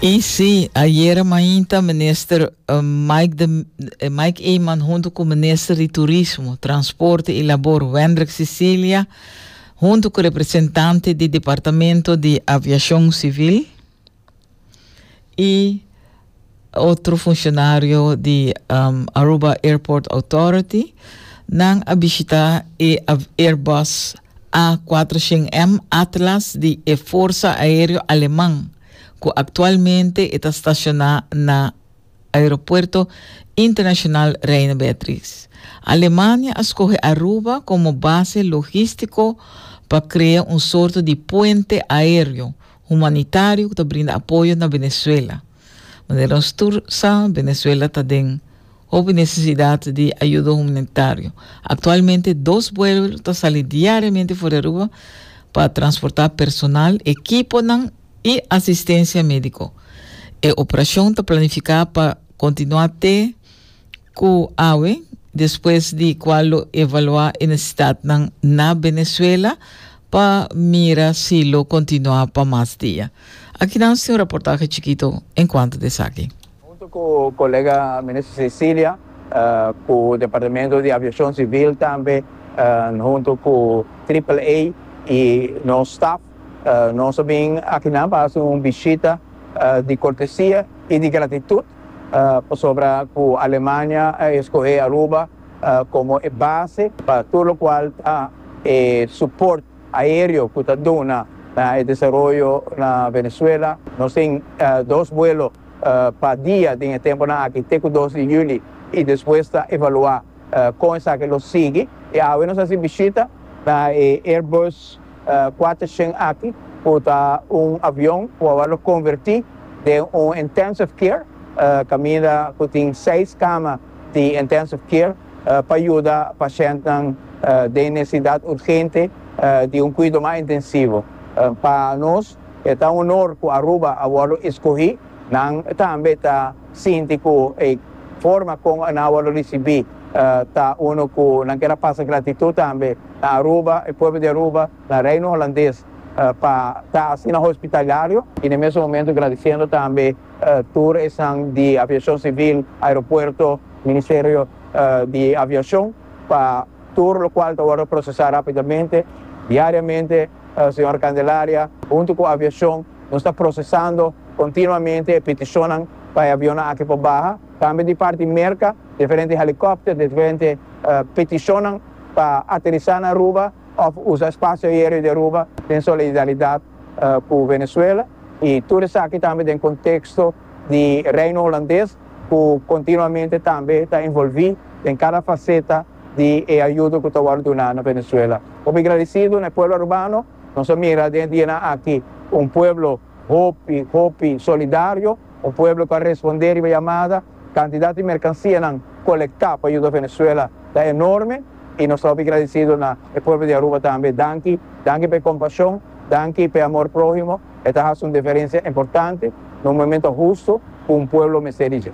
Y si, ayera mainta Minister Mike de Mike Eman hunto cu Minister di Turismo, Transporte y Labor Wendrick Sicilia hunto cu representante di Departamento di Aviacion Civil y Otro funcionario di Aruba Airport Authority nan a bishita e Airbus A cuatrocientos M Atlas di e Forsa Aereo Aleman cu actualmente e ta staciona na Aeropuerto Internacional Reina Beatriz. Alemania a scoge Aruba como base logistico pa crea un sorto di puente aereo humanitario cu ta brinda apoyo na Venezuela. Manera nos tur sa, Venezuela ta den hopi necesidad di ayuda humanitario. Actualmente dos buelo ta sali diariamente for di Aruba pa transporta personal, equiponan y asistencia medico. E operacion ta planifica pa continua te Ku awe, despues di kua lo evaluá e nesesitatnan na Benezuela pa mira si lo kontinuá pa mas dia. Aki nan tin un raportahe chikito enkuanto di esaki. Huntu ku kolega Minister Cecilia, ku Departamento di Aviashon Sivil tambe huntu ku Triple A i nos staf, nos a bin akinan pa hasi un bishita di kortesia i di gratitut Pasobra cu Alemania a escoge Aruba como e base pa tur locual ta e support aereo cu ta duna na e desaroyo na Venezuela. Nos tin dos vuelo pa dia den e temponan aki te cu dos di juli y despues ta evalua con esaki lo sigui. Y awe nos haci bishita na e Airbus. Kuater shen aki ku ta un avion ku awa lo konvertí den un intensive care kaminda ku tin seis kama di intensive care pa yuda pashèntnan den nesesidat urgente di un kuido mas intensivo. Pa nos e ta un onor ku Aruba a wòrdu eskohí. Nan tambe ta sinti ku e forma kon nan a wòrdu risibí ta unu ku nan ker a pasa gratitut tambe. Na Aruba, e pueblo di Aruba, na Reino Holandes, pa ta asina hospitalario y na mesun momento gradiciendo tambe tur esnan di Aviacion Civil, Aeropuerto, Ministerio di Aviacion pa tur locual ta wordo procesa rapidamente. Diariamente, Señora Candelaria, hunto cu Aviacion nos ta procesando continuamente e peticionnan pa e avionnan aki por baha. Tambe di parti Merca, diferente helicopter, diferente peticionnan. pa aterisá na Aruba òf usa spasio aereo di Aruba den solidaridat ku Venezuela i tur esaki tambe den konteksto di Reino Holandes ku kontinuamente tambe ta envolví den kada faseta di e ayudo ku ta wòrdu duná na Venezuela. Hopi gradisidu na e pueblo arubano, nos a mira den e dianan aki un pueblo. Hopi, hopi solidario. Un pueblo cu a respondé riba e yamada. Cantidad di mercancianan colectá pa yuda Venezuela ta enorme y nos ta hopi gradecido na e pueblo di Aruba tambe. Danki, danki pa e compasion, danki pa e amor prohimo. E ta haci un diferencia importante na un momento husto cu un pueblo mester di dje.